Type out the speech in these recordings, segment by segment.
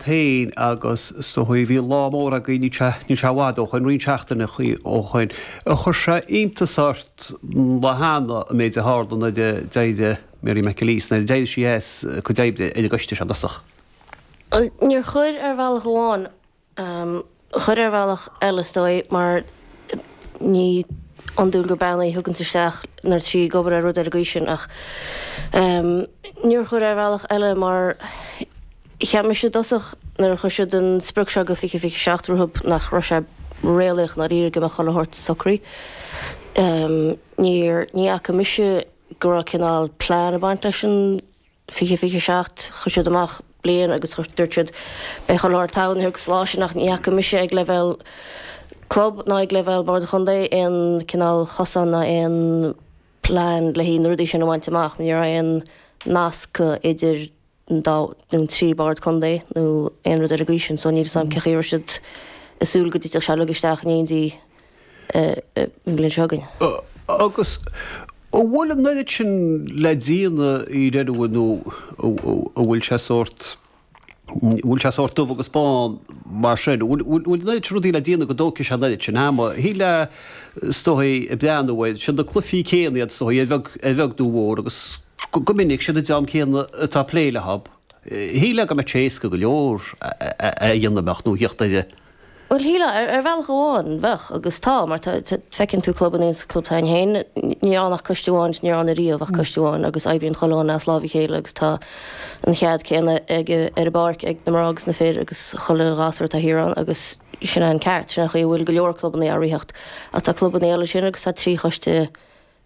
féin agus sa chaoi bhí lá mór agaibh níl sé níl sé i bhfad ó shoin roinnt seachtainí ó shoin ar chuir sé iontas ort lá cheana an méid a tharla nuair a d'éirigh Mary McAleese nuair a d'éirigh sí as a cuid oibre ar an gcoiste seo i dtosach. Níor chuir ar bhealach amháin. chuir ar bhealach eile, is dóigh, mar ní iondúil gur bean í a thuganns isteach nuair atá sí ag obair ar rud ar an gcaoi sin, ach níor chuir ar bhealach eile mar cheap mise i dtosach nuair a chuir siad an sprioc seo go 2027 rompu nach raibh sé réalaíoch dáiríre go mbeadh chuile shórt socraithe. Níor, ní fhaca mise go raibh cineál plean ag baint leis an. 2027. Chuir siad amach bliain agus dúirt siad, Beidh chuile shórt togha ag an lá sin ach ní fhaca mise ag leibhéal club ná ag leibhéal Bord an Chontae aon chineál cosán ná aon plean le haghaidh na rudaí sin a bhaint amach. Ní raibh aon nasc idir an dá nó an trí Bord Contae nó aon rud ar an gcaoi sin. So níl fhios agam cé chaoi a raibh siad ag súil go dtitfeadh sé uilig isteach in éindí. an bhliain seo againn. Agus an bhfuil an oiread sin le déanamh i ndáiríre nó an bhfuil sé sórt, an bhfuil sé sórt dubh agus bán mar sin? An bhfuil an oiread sin rudaí le déanamh go dtógfaidh sé an oiread sin ama? Thig leat, is dóichí, ag breathnú air, siad na cluifí céanna iad, is dóichí, a bheag, a bheag nó a mhór agus go minic siad an dream céanna atá ag plé leo. Shílfeá go mbeadh sé éasca go leor é a dhéanamh amach nó thíocht air. Bhuel, shílfeá, ar bhealach amháin, bheadh, agus tá, mar tá, feiceann tú clubannaí, sa club s'againn féin, níl ann ach coiste amháin, ní raibh ann ariamh ach coiste amháin, agus oibríonn chuile dhuine as lámh a chéile agus tá an cead céanna ag, ar an bpáirc ag na mná agus na fir agus chuile ghasúr atá thiar ann agus sin é an ceart, sin an chaoi a bhfuil go leor clubanna á ritheacht. Ach tá clubanna eile ansin agus tá trí choiste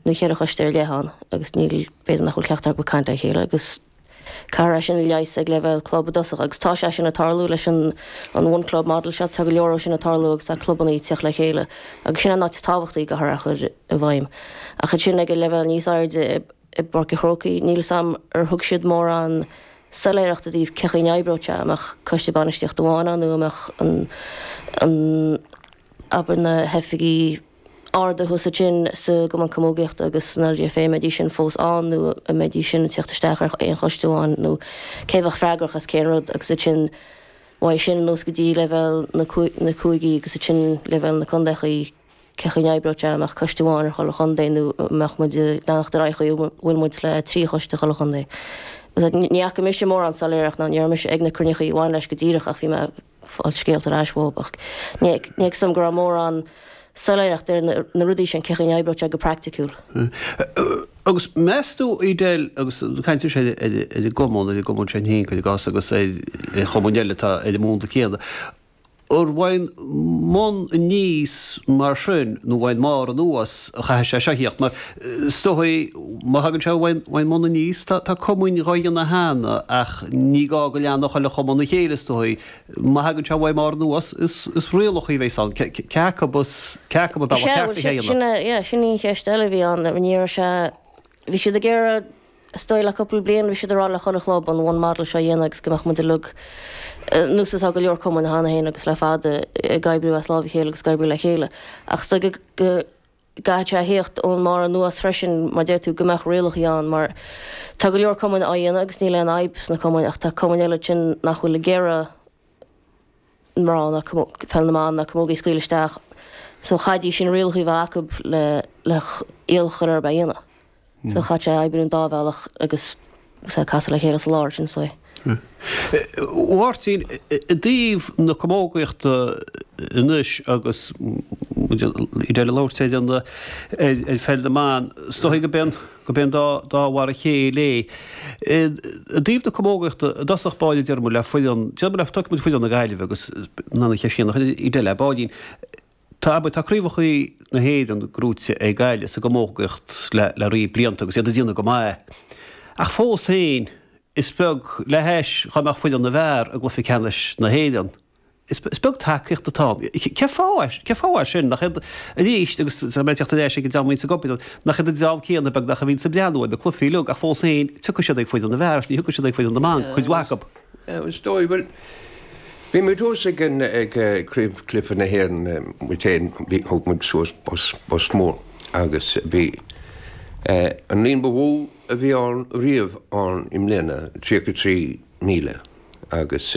nó ceithre choiste ar leith ann agus níl, b'fhéidir nach bhfuil ceachtar acu ag caint le chéile agus caithfear é sin a leigheas ag leibhéal club i dtosach agus tá sé sin ag tarlú leis an an One Club Model seo, tá go leor de sin ag tarlú agus tá clubanna ag teacht le chéile agus sin an áit is tábhachtaí, go háirithe a chur i bhfeidhm. Ach ansin ag an leibhéal níos airde i i bPáirc an Chrócaigh, níl 'fhios a'm ar thug siad mórán soiléireacht i dtaobh cé chaoi an oibreodh sé, an mbeadh coiste bainistíochta amháin ann nó an mbeadh an an abair na hoifigigh arda agus iad sin, sa gCumann Camógaíochta agus san LGFA, an mbeidís sin fós ann nó an mbeidís sin ag teacht isteach ar aon choiste amháin nó cé a bheadh freagrach as cén rud agus ansin uaidh sin anuas go dtí leibhéal na cúigí agus ansin leibhéal na contaechaí cé chaoi n-oibreodh sé an mbeadh coiste amháin ar chuile chontae nó an mbeadh muid ag leanacht ar aghaidh an chaoi a bhfuil muid le trí choiste chuile chontae. Ní fhaca mise mórán soiléireacht ná ní raibh mise ag na cruinníochaí a bhain leis go díreach ach bhí mé fáil scéala ar ais uaibh ach ní fheicim go raibh mórán soiléireacht ar na rudaí sin, cé chaoi a n-oibreodh sé go praiticiúil. Agus meas tú, Edel, agus ag caint ar sin ar an gcumann, ar an gcumann sin féin, cuir i gcás, agus ar chumainn eile atá ar an mbonn céanna, an ón mbun aníos mar sin nó an ón mbarr anuas a chaithfidh sé seo a thíocht? Mar Is dóigh, má thagann sé ón mbun aníos, tá cumainn dhá dhéanamh cheana, ach ní gá go leanfadh chuile chumann a chéile, is dóigh. Má thagann sé ón mbarr anuas, is rialacha a bheas ann, cé acu ab é an bealach ceart lena dhéanamh. Sea, bhuel, sin, sin í an cheist eile a bhí ann. Ní raibh sé, bhí siad ag iarraidh, is dóigh le cúpla bliain, bhí siad ag rá le chuile chlub an one model seo a dhéanamh agus go mbeadh muid uilig, now, yes, tá go leor cumainn cheana féin agus le fada, ag oibriú as lámh a chéile agus ag oibriú le chéile. Ach is dóigh go, go, gcaithfidh sé a thíocht ón mbarr anuas freisin mar deir tú go mbeadh rialacha ann mar tá go leor cumainn á dhéanamh agus níl aon fhadhb sna cumainn ach tá cumainn eile ansin nach bhfuil ag iarraidh mná ná peil na mban ná camógaí a scaoil isteach so chaithfidís sin rialacha a bheith acub le iad a chur ar a dhéanamh. So caithfidh sé oibriú an dá bhealach agus agus castáil le chéile sa lár, ansin. A Mháirtín, I dtaobh na camógaíochta anois agus muid ag labhairt ar an ar pheil na mban, is dóigh go bíonn go bíonn dá dhá mhar a chéile é. I dtaobh na camógaíochta, i dtosach báire deir muid le foireann deir muid le tóigfidh muid foireann na Gaillimhe agus an an cheist chéanna a chuir mé ar Edel ar ball beag, Tá abair, tá craobhacha na hÉireann gnóite ag Gaillimh sa gcamógaíocht le riar blianta agus iad ag déanamh go maith, ach fós féin is beag, le hais dhá mbeadh foireann na bhfear i gcluife ceannais na hÉireann, is beag tacaíocht atá ann. Cén fáth é sin? Nach iad, arís, agus tá mé ag teacht ar ais ag an dream a bhíonn sa gcopail liom, nach iad an dream céanna beagnach a bhíonn sa mbaile ag na cluifí uilig, ach fós féin tiocfaidh siad ag foireann na bhfear agus ní thiocfaidh siad ag foireann na mban, cuid mhaith acub. Is dóigh, bhuel, bhí muid thuas ag an, ag craobhchluife na hÉireann muid fhéin, bhí, thóg muid suas bus, bus mór agus bhí an líon ba mhó a bhí ann riamh ann i mbliana, 33,000 agus.